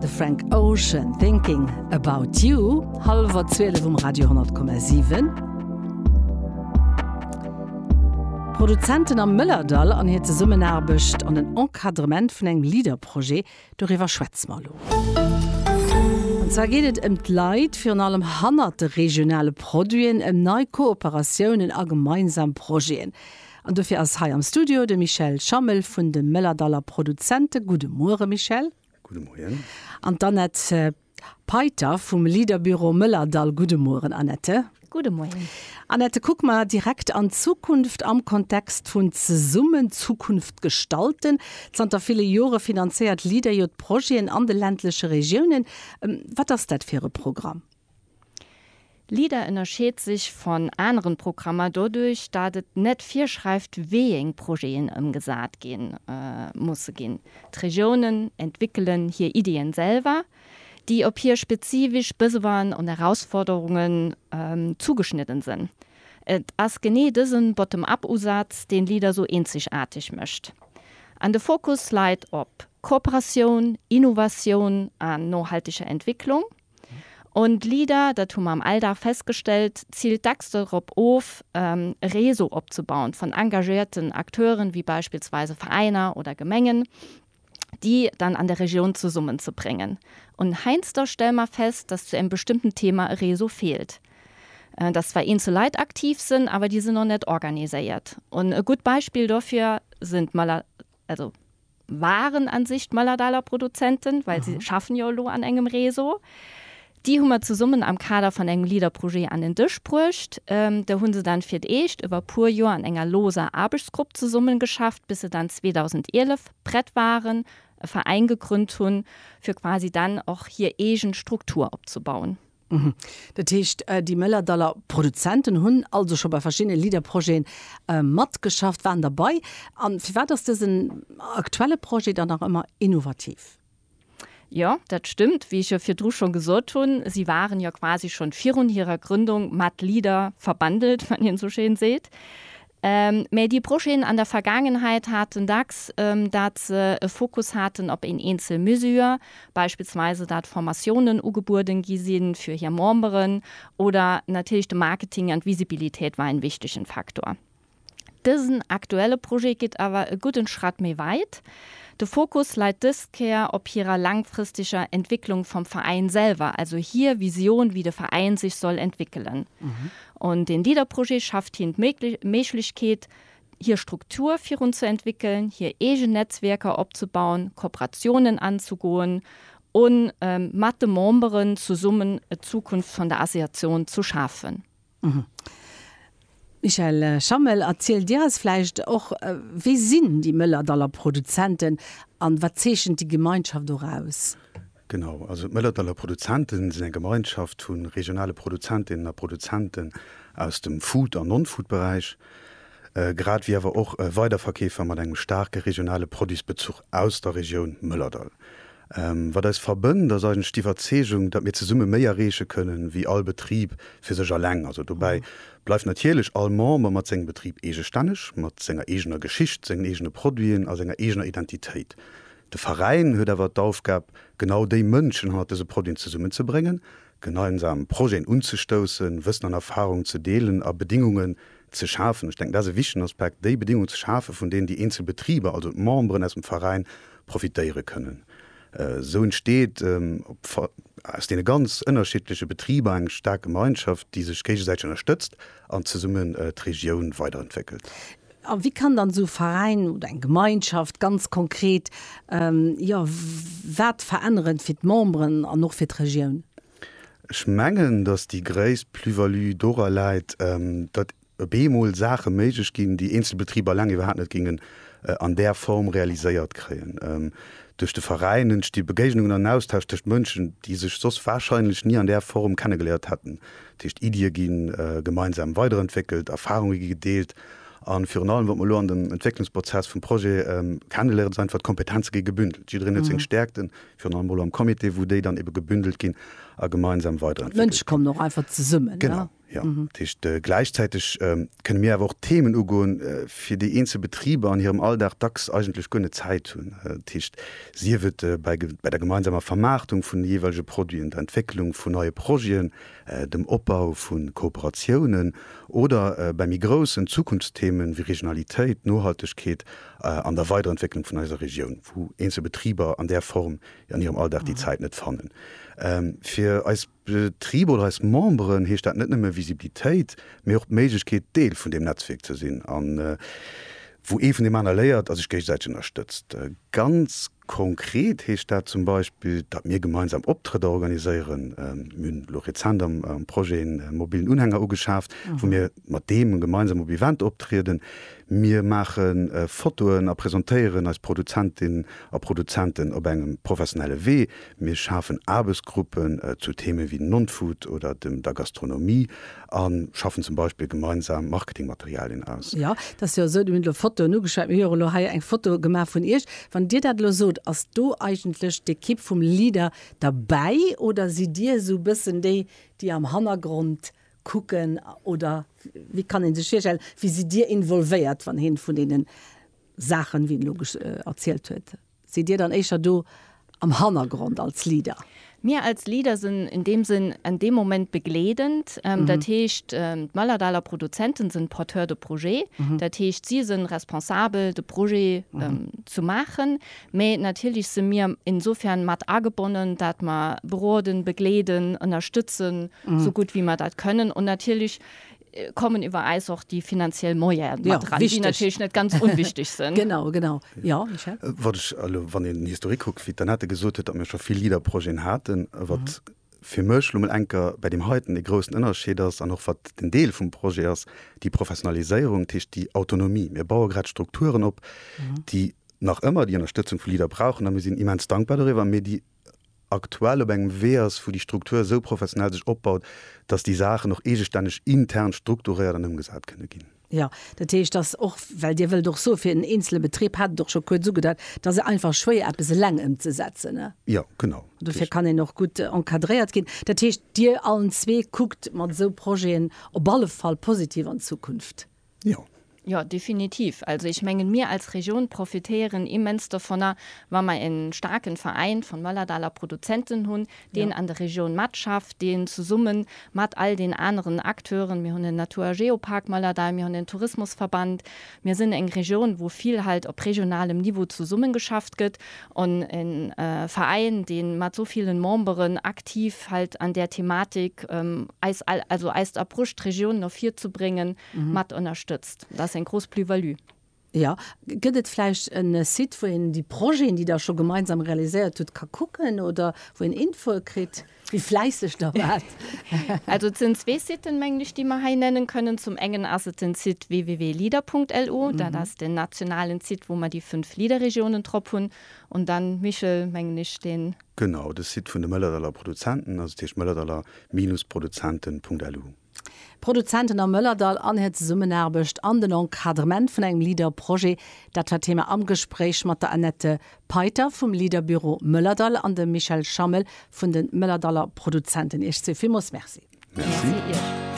De Frank Ocean thinking about you halwer 12 um Radio 10,7. Produzenten am Mëllerdall an hir Zesummenaarbecht an den Encadrement vun engem Liederprojet, doriwwer schwätze mer elo. An zwar geet et ëm d'Leit, virun allem hannert de regionale Produiten, ëm nei Kooperatiounen a gemeinsam Projeten. An dofir ass hei am Studio de Michel Schammel vun de Mëllerdaller Produzenten. Gudde Muere Michel. Gudde Moien. An d'Annette Peiter vum Leaderbüro Mëllerdall. Gudde Mueren Annette. Gudde Moien. Annette, kuck mer direkt an d'Zukunft am Kontext vun Zesummen Zukunft gestalten. Zanter ville Jore finanzéiert Leader jo d'Projeten an de ländleche Regiounen. Wat ass dat fir e Programm? LIDER ënnerscheet sech von aneren Programmer doduerch dat et net virschreift weeëng Projeten ëmgesaat gi musse ginn. D'Regiounen entwickelen hier Ideen selwer, déi op hier spezifisch Besoinen und Herausforderungen zugeschnidden sënn. Et ass genee dësen Bottom-up Usaatz deen LIDER sou eenzegaarteg mëcht. An de Fokus leit op Kooperatioun, Innovatioun an nohalteger Entwicklung. Und LEADER, dat hu mer am LDAR festgestellt, ziilt dacks dorop of, e Réseau opzebauen vun engagéierten Acteuren, wéi beispillsweise Veräiner oder Gemengen, déi dann an der Regioun zesummenzebréngen. Und heiansdo stelle mer fest, dass zu engem bestëmmten Thema e Réseau feelt, dass zwar eenzel Leit aktiv sinn, awer déi sinn och net organiséiert. Und e gutt Beispill dofir sinn d'Mëller. also waren an sich d'Mëllerdaler Produzenten, well si schaffen jo elo an engem Réseau, déi hu mer zesummen am Kader van engem LEADER-Projet an den Dësch bruecht. Do hu se dann fir d'éischt iwwer puer Joer an enger looser Aarbechtsgrupp zesummen geschafft, bis se dann 2011 prett waren, e Veräin gegründ hunn, fir quasi dann och hir eegen Struktur opzebauen. Dat heescht, déi Mëllerdaller Produzenten hunn also scho bei verschiddene LEADER-Projeten matgeschafft, waren derbei. A firwat ass dësen aktuelle Projet dann nach ëmmer innovativ? Jo, dat stëmmt. Wéi ech jo virdru schonn gesot hunn, si waren jo quasi schonn virun hirer Grëndung mat LEADER verbandelt, wann een esou schéin seet. Mä déi Projeten an der Vergaangenheit haten dacks, dat se e Fokus haten op een eenzel Mesure, beispillsweise dat Formatiounen ugebueden gi si fir hir Memberen, oder natierlech de Marketing an d'Visibilitéit war een wichtegen Faktor. Dësen aktuelle Projet geet awer e gudden Schratt méi wäit. De Fokus läit dës Kéier op hirer laangfristeger Entwicklung vam Veräin selwer, also hir Vision wéi de Veräin sech soll entwickelen. An den LEADER-Projet schaaft hien d'Méiglechkeet, hir Struktur virun ze entwéckeln, hir eegen Netzwierker opzebauen, Kooperationen anzugoen an mat de Memberen zesummen d'Zukunft vun der Associatioun ze schaafen. Michel Schammel, erzielt Dir eis vläicht och, wie sinn déi Mëllerdaller Produzenten an wat zeechent déi Gemeinschaft och aus? Genau, also d'Mëllertaller Produzenten sinn eng Gemeinschaft vu regionale Produzentinnen a Produzenten aus dem Food an Non-Food-Beräich, grad ewéi awer och Weiderverkeefer mat engem staarke regionale Produitsbezuch aus der Regioun Mëllerdall. Wat eis verbënnt, ass eigentlech d'Iwwerzeegung, datt mir zesumme méi erreeche kënnen, ewéi all Betrib fir sech eleng. Also dobäi bleift natierlech all Member mat sengem Betrib eegestänneg, mat senger eegener Geschicht, sengen eegene Produiten a senger eegener Identitéit. De Veräin huet awer d'Aufgab, genau déi Mënschen hannert dëse Produiten zesummenzebréngen, gemeinsam Projeten unzestoussen, Wëssen an Erfahrung ze deelen a Bedingungen ze schafen, ech denken dat ass e wichtegen Aspekt, déi Bedingungen ze schafen, vun deenen déi eenzel Betriber, also d'Memberen aus dem Veräin, profitéiere kënnen. Esou entsteet aus deene ganz ënnerschiddleche Betriber eng staark Gemeinschaft, déi sech géigesäiteg ënnerstëtzt an zesummen d'Regioun weiderentwéckelt. A wéi kann dann esou e Veräin oder eng Gemeinschaft ganz konkret, jo, wat veränneren fir d'Memberen an och fir d'Regioun? Ech mengen, datt déi gréisst Plus-value dora läit, datt op eemol Saache méiglech ginn, déi eenzel Betriber eleng iwwerhaapt net gingen an där Form realiséiert kréien. Duerch de Veräin entsti Begéignungen an Austausch tëscht Mënschen, déi sech soss warscheinlech ni an där Form kennegeléiert hätten. Dat heescht, Iddie gi gemeinsam weiderentwéckelt, Erfarunge gi gedeelt a virun allem, wat mer elo an dem Entwécklungsprozess vum Projet kenneléieren, ass einfach, d'Kompetenze gi gebündelt. Jiddereen huet seng Stäerkten, virun allem elo am Comité, wou déi dann ebe gebündelt ginn a gemeinsam weiderentwéckelt ginn. D'Mënsche kommen och einfach zesummen, ne? Genau, jo. Dat heescht, gläichzäiteg kënne mir awer och Themen ugoen, fir déi eenzel Betriber an hirem Alldag dacks eigentlech guer net Zäit hunn. Dat heescht, sief et bei der gemeinsamer Vermaartung vun de jeeweilege Produiten, der Entwécklung vun neie Projeten, dem Opbau vu Kooperatiounen oder bei méi groussen Zukunftsthemen wéi Regionalitéit, Nohaltegkeet an der Weiderentwécklung vun eiser Regioun, wou eenzel Betriber an där Form an hirem Alldag déi Zäit net fannen. Fir eis Betriber oder eis Memberen heescht dat net nëmme Visibilitéit, mee och d'Méiglechkeet, Deel vun deem Netzwierk ze sinn, wou ee vun deem aner léiert a sech géigesäiteg ënnerstëtzt. Ganz. Konkret heescht dat zum Beispill, datt mir gemeinsam Optrëtter organiséieren. Mir hunn elo rezent am Projet en mobillen Unhänger ugeschaaft, wou mir mat deem gemeinsam op Eventer optrieden. Mir maache Fotoen a presentéieren eis Produzentin a Produzenten op engem professionelle Wee. Mir schafen Aarbechtsgruppen zu Theeme wéi Non-Food oder der Gastronomie. A schaffen zum Beispill gemeinsam Marketingmaterialien aus. Jo, dat ass jo esou. Dir hutt elo Fotoen ugeschwat. Mir hu jo elo hei eng Foto gemaach vun Iech. Wann Dir dat elo sot, ass do eigentlech d'Ekipp vum LEADER derbäi oder sidd Dir esou e bëssen déi, déi am Hannergrond kucken? Oder wéi kann ee sech virstellen, wéi sidd Dir involvéiert, wann ee vun deene Saachen, wéi en elo erzielt huet, Sidd Dir dann éischer do am Hannergrond als Leader? Mir als Leader sinn in deem Sënn en deem Moment begleedend. Dat heescht, d'Mëllerdaler Produzenten sënn Porteurs de projet. Dat heescht, si sënn responsabel de Projet zu maachen. Mä natierlech si mir insofern mat agebonnen, dat mer beroden, begleeden, ënnerstëtzen, sou gutt wéi mer dat kënnen. An natierlech kommen iwwer äis och déi finanziell Moyene mat eran, déi natierlech net ganz onwichteg sinn. Genau, genau. Ja, Michel? Wat ech elo, wann een den Historique kuckt, wéi d'Annette gesot huet, datt mir scho vill LEADER-Projeten haten, wat fir mech elo mol enker bäi deem heiten dee groussen Ënnerscheed ass an och wat den Deel vum Projet ass, déi Professionaliséierung, dat heescht déi Autonomie. Mir baue grad Strukturen op, déi nach ëmmer déi Ënnerstëtzung vu LEADER brauchen a mir sinn immens dankbar doriwwer, mee déi aktuell op engem Wee ass, wou déi Struktur esou professionell sech opbaut, dass déi Saachen och eegestänneg intern strukturéiert an ëmgesat kënne ginn. Jo, dat heescht, dass och, well Dir wëllt och soe fir en eenzele Betrib, hat et och scho kuerz ugedeut, et ass jo einfach schwéier eppes eleng ëmzesetzen. Jo, genau. An dofir kann een och gutt encadréiert ginn. Dat heescht, Dir allen zwee kuckt mat esou Projeten op alle Fall positiv an d'Zukunft. Jo. Jo, definitiv. Also ech mengen, mir als Region profitéieren immens dovunner, wa mer e staarken Veräin vun Mëllerdaler Produzenten hunn, deen an der Region matschafft, deen zesummen mat all den aneren Acteuren, mir hunn en Natur a Geopark Mëllerdall, mir hunn en Tourismusverband, mir sinn eng Region, wou vill halt op regionalem Niveau zesummengeschafft gëtt, En Veräin deen mat sou villen Memberen aktiv hält an där Thematik eis all, also eist Approche d'Regioun no vir ze bréngen, mat ënnerstëtzt. Dat ass eng grouss Plus-value. Jo, gëtt et vläicht en Site wou een déi Projeten déi der scho gemeinsam realiséiert hutt ka kucken oder wou een Infoe kritt? Wie fläisseg da wat! Also et sinn zwee Siten, mengen ech, déi mer hei nennen kënnen. Zum engen ass et den Site www.leader.lu. Dat ass den nationalen Site, wou mer déi fënnf Leader-Regiounen drop hunn. Un Dan Michel, mengen ech, deen. Genau, de Site vun de Mëllerdaller Produzenten, also dat heescht mëllerdaller-produzenten.lu. Produzenten am Mëllerdall an hir Zesummenaarbecht an den Encadrement vun engem LEADER-Projet, dat war d'Thema am Gespréich mat der Annette Peiter vum LEADER-Büro Mëllerdall an dem Michel Schammel vun de Mëllerdaller Produzenten. Iech zwee villmools Merci. Merci Iech.